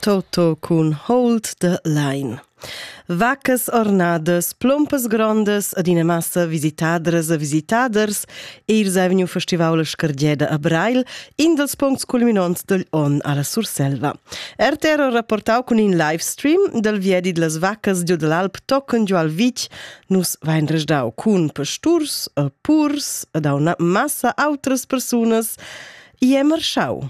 Toto cun Hold the Line. Vacas ornadas, plompas grondas ed ina massa visitadras e visitaders eis ei vegniu festival la scardeda a Breil, in dels puncts culminonts degl onn alla Surselva. RTR ha rapportau cun in live stream dal viedi dlas vacas giu dall'Alp tochen giu al Vitg nus vein resdau cun pasturs, purs ed una massa outras persunas. E marschau.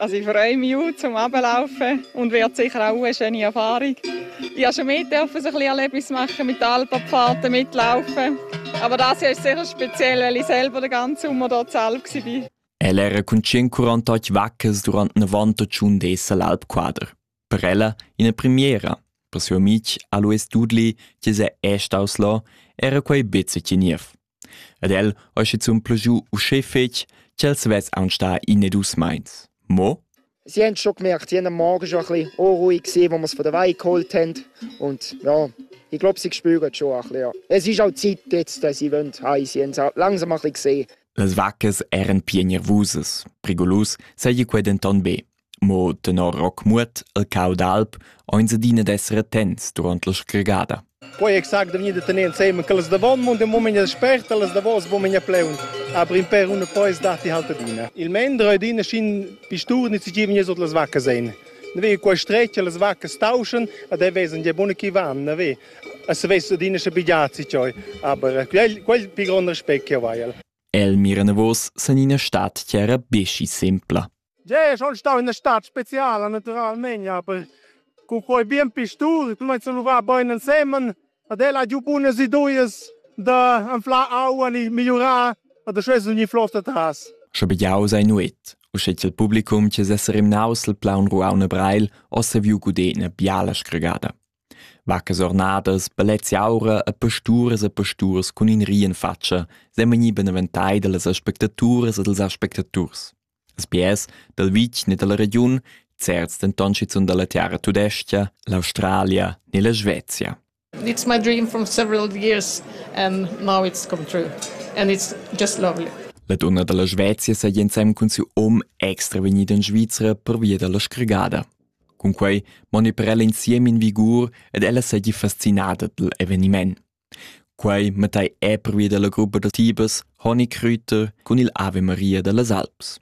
Also ich freue mich auch zum Ablaufen und werde sicher auch eine schöne Erfahrung. Ich durfte schon mit ein bisschen Erlebnis machen, mit Alpenpfaden mitlaufen. Aber das ist sicher speziell, weil ich selber den ganzen Sommer dort selbst war. El era cun 148 vaccas durant 91 dis al Alpquader. Per ella ina premiera. Per suo amic Alois Dudli, che se è staus là, era quei bezze niev. Ed el ha schizun plagiu uschè fetg ch'els vess aunc stà in e dus meins. Mo Sie haben schon gemerkt, sie haben am Morgen schon ein bisschen unruhig gewesen, als wir es von der Weih geholt haben. Und ja, ich glaube, sie spüren schon ein bisschen. Ja. Es ist auch Zeit jetzt, dass sie wollen heim. Sie haben es auch langsam ein bisschen gesehen. Las vacas eran pienervusas. Prigolus seigi quei denton be. Mo tenor Rockmuot el cau d'alp eins adina d'esser attents duront la scregada. Poi exact da venir da tener ensemen quellas davon, mon de moment es spert, las davos bo menia pleun. Aber in per una poi dati halt adina. Il mendra adina schin pistur ni ci vegni sot las vacche sein. Ne ve qua strecce las vacche stauschen, ad e vesen je bone chi van, ne ve. Es ves adina sche bigiazi cioi, aber quel quel più grande respect che vai. El mira navos san ina stat tiara beschi sempla. Gea, schon stau in una stad speciala naturalmente, aber con quei bien pistur, tu meinst lu va bein ensemen, ad el ha giu bunas ideas da anflar aua e migliurar a da schwes ogni floss atras. Sche begiau sei nuet, u sche il publicum che sesser im Nausel plaun ruauna breil, ossa viu gudena biala scregada. Vacas ornadas, balezzi aura e pasturas e pasturs cun in rien faccia, semani beneventai dallas aspectaturas e dals aspectaturs. Sbiers dal vitg ne dalla regiun, certs denton schizun dalla tiara tudestga, l'Australia ne la Svezia. It's my dream from several years and now it's come true and it's just lovely. La donna dalla Svezia sa ensem cun siu om extra vegnida in Svizra per via dalla sgregada. Cunquei moni per ella insiem in vigur ed ella seigi fascinada dal eveniment. Quei matei ei pervia dalla gruppa da tibas Honigkrüter cun il Ave Maria dallas Alps.